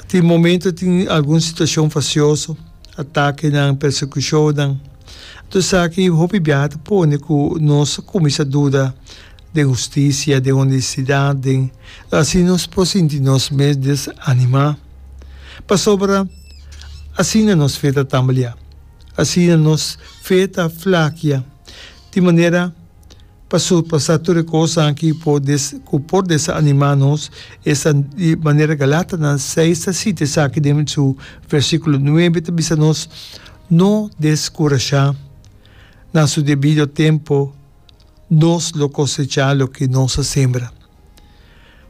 Tin momento tin algun situacion facioso, atakenan, persecucionnan. Anto esaki hopi biaha ta pone cu nos a cuminsa duda den husticia, den honestidad, den. Lo asina nos por sinti nos mes desanima. Pasobra asina nos fe ta tamblia. Asina nos fe ta flakia. Di manera. pa surpasá tur e kosnan ki por des ku por desanimá nos, esta di manera Galátanan seis ta sita esaki den su versíkulo nuebe ta bisa nos, No deskurashá, na su debido tempu nos lo kosechá loke nos a sembra.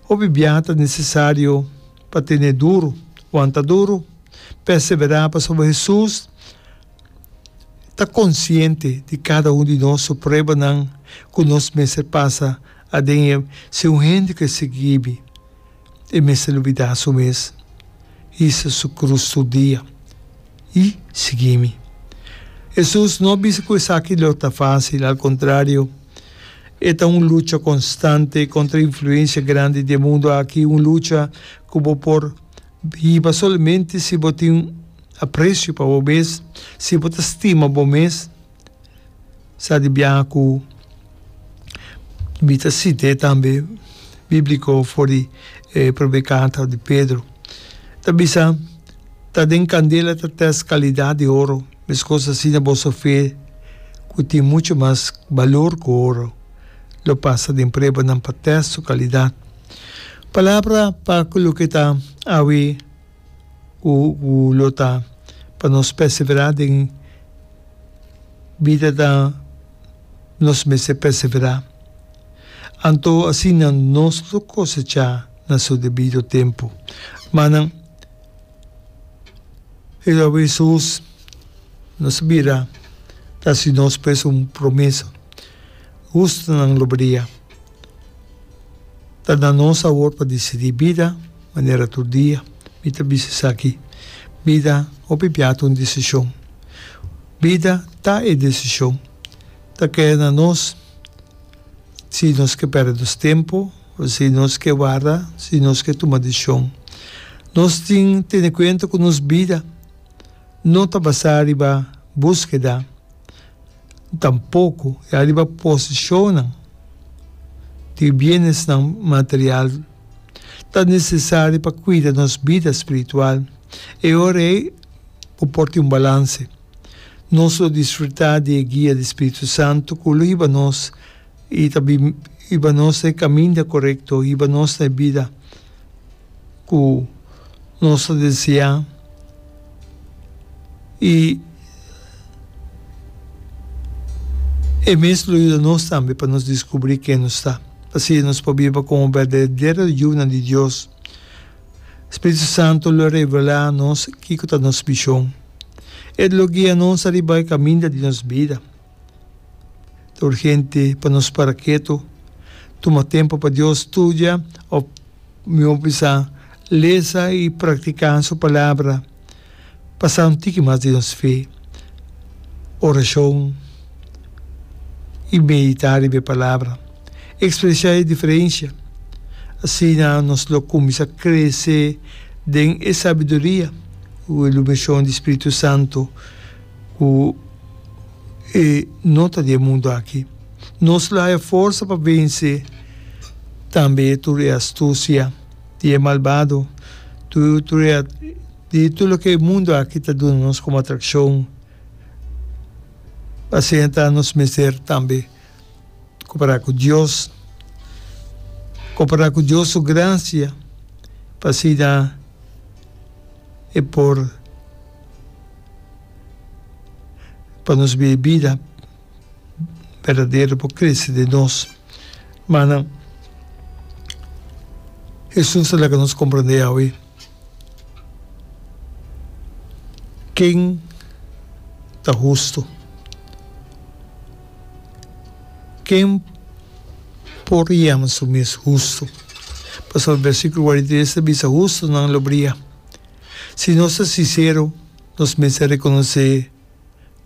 Hopi biaha ta nesesario pa tene duru, wanta duru, perseverá pasobra Hesus, ta konsiente di kada un di nos su pruebanan ku nos mester pasa aden e. Si un hende ke sigui ibi, e mester lubidá su mes, hisa su krus tur dia, i sigui mi. Hesus no a bisa ku esaki lo ta fásil, al kontrario, e ta un lucha konstante kontra e influensia grandi di e mundu aki, un lucha ku bo por Hiba solamente si bo tin aprecio pa bo mes, si bo ta stima bo mes. Sa di biaha cu mi ta site tambe biblico for di e probe carta di Pedro. Ta bisa, Ta den candela ta test calidad di oro, mescos asina boso fe, cu tin mucho mas balor cu oro, lo pasa den pruebanan pa test su calidad. Palabra pa cu loke ta awe cu cu lo ta pa nos persevera den bida ta nos mester persevera. Anto asina nos lo cosecha na su debido tempo. Manan, e lo awe Jesús nos bira ta haci nos pues un promesa. Justonan lo badia. ta na nos awor pa disidí bida manera tur dia. Mi ta bisa esaki, Bida hopi bia ta un desishon. Bida ta e desishon. Ta keda na nos si nos ke pèrdè nos tempu o si nos ke warda, si nos ke tuma desishon. Nos tin tene kuenta ku nos bida no ta basá riba búskeda. Tampoco e ariba posesionnan di bienesnan material ta necesari pa cuida nos bida spiritual. E ora ei bo por tin un balance. Nos lo disfruta di e guia di Spiritu Santu cu lo hiba nos i ta hiba nos na e caminda corecto, hiba nos na e bida. ku nos ta deseá i e mes lo yuda nos tambe pa nos diskubrí ken nos ta. Asina nos por biba komo berdadero yunan di Dios. Spiritu Santu lo revelá nos kiko ta nos mishon. E lo guia nos riba e kaminda di nos bida. Tur hente pa nos para ketu, tuma tempu pa Dios studia òf mihó bisa lesa i praktiká Su Palabra pa sa un tiki mas di nos fe. Orashon i meditá riba e Palabra ekspresiá e diferensia. Asina nos lo kuminsá krese den e sabiduria ku e luminashon di spiritu santu. ku e no ta di e mundu aki. Nos lo haya forsa pa vense tambe tur e astusia di e malbado, tur e di tur loke e mundu aki ta duna nos komo atrakshon. Asina ta nos mester tambe kompará ku Dios, kompará ku Dios su grasia pa asina e por. pa nos biba e bida berdadero por crece den nos. Manan, Jesús a laga nos comprende awe ken ta hustu, ken por yama su mes hustu, pasobra versiculo kuarenta i tres ta bisa, Hustunan lo bria. Si nos ta sinsero, nos mester rekonosé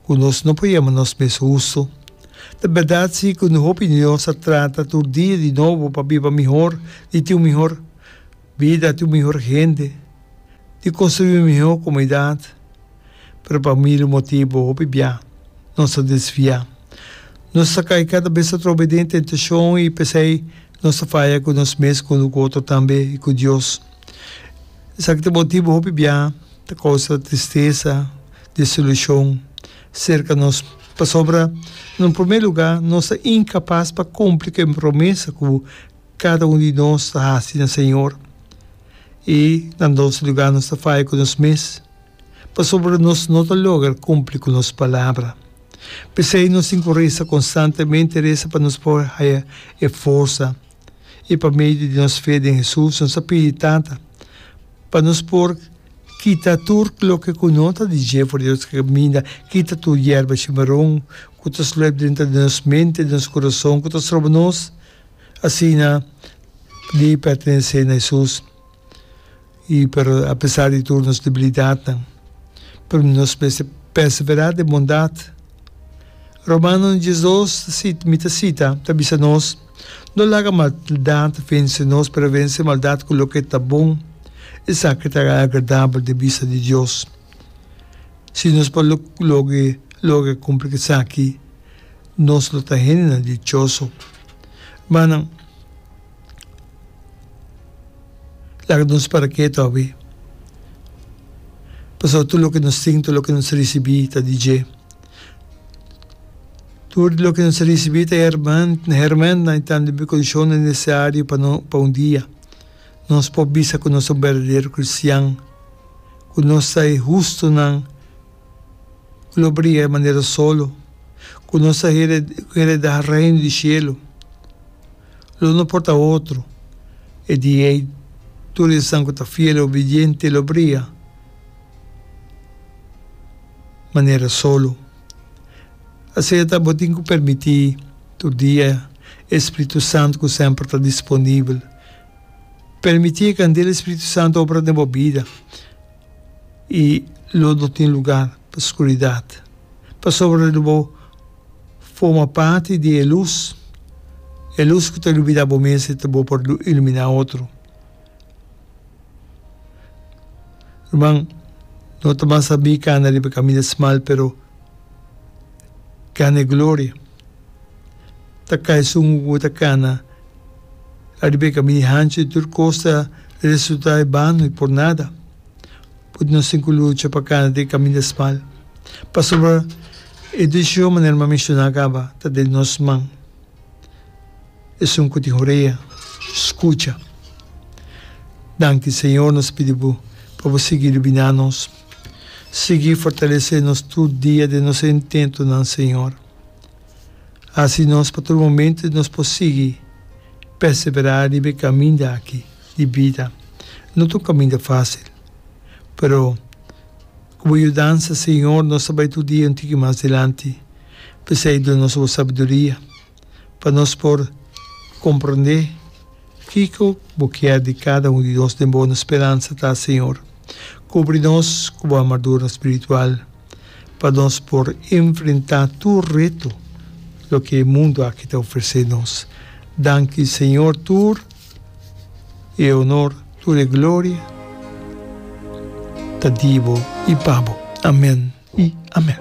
ku nos no por yama nos mes hustu. Ta bèrdat si ku un hopi di nos a trata tur dia di nobo pa biba mihor, di tin un mihor bida, di un mihor hende, di konstruí un mihó komunidat. Pero pa milu motibu, hopi bia nos ta desviá. Nos ta kai kada bes atrobe den tentashon i p'esei nos ta faya ku nos mes, ku otro tambe i ku Dios. Esaki ta motibu hopi biaha ta kousa tristesa, desilushon, serka nos. Pasobra, na un promé lugá, nos ta inkapas pa kumpli ku e promesa ku kada un di nos ta hasi na Señor. I na dos lugá, nos ta faya ku nos mes, pasobra nos no ta logra kumpli ku nos palabra. P'esei nos tin ku resa konstantemente, resa pa nos por haya e forsa. I pa medio di nos fe den Hesus nos a pidi Tata pa nos por kita tur loke ku no ta di dje for di nos kaminda, kita tur yerba shimaron ku ta sluep drenta di nos mente, di nos kurason ku ta stroba nos asina di pertenesé na Hesus. I pero apesar di tur nos debilidatnan, pero nos mester perseverá den bondat. Romano diesdos ta sita, mi ta sita, ta bisa nos, No laga maldat vense nos, pero vense maldat ku loke ta bon, esaki ta agradabel den bista di Dios. Si nos por lo loke logra kumpli esaki, nos lo ta hendenan dichoso. Mannan. laga nos para ke ta hopi pasobra tur loke nos tin tur loke nos risibi ta di dje tur loke nos risibi ta herman hermannan y tambe bendicionnan necesario pa no pa un dia nos por bisa ku nos ta un berdadero cristian ku nos ta e hustunan ku lo briga e manera solo ku nos ta hereda heredar reino di shelu. lo no por ta otro. E di ei tur esan ku ta fiel i obediente lo bria manera solo. Asina bo tin ku permití tur dia e Spiritu Santu ku semper ta disponibel. Permití e kandela di Spiritu Santu obra den bo bida. i lo no tin lugar pa skuridat, pasobra lo bo forma parti di e lus, e lus ku ta lumina bo mes i ta bon pa iluminá otro. Ruman, no ta masha mi kanda riba kaminda smal, pero gana e gloria. ta kai sungu ku bo ta kana ariba e kami di hanchi i tur kos ta resulta i bano i por nada. But nos tin ku lucha pa kana den e kami di smal pasobra e desishon manera mi a menshoná kaba ta den nos man. Esun ku tin orea, skucha. Danki Señor nos pidi bo pa bo sigui lubiná nos. Sigui fortalesé nos tur dia den nos intentonan Señor. Hasi nos pa tur momentu nos por sigui perseverá riba e kaminda aki di bida. No ta un kaminda fásil, pero ku Bo yudansa, Señor, nos ta bai tur dia un tiki mas dilanti. P'esei duna nos Bo sabiduria pa nos por komprondé. Kiko bo kier di kada un di nos den bo? Nos speransa ta, Señor, kubri nos ku bo armadura spiritual pa nos por enfrentá tur reto loke e mundu aki ta ofresé nos. Danki, Señor, tur e honor, tur e gloria ta di bo i pa bo. Amen i amen.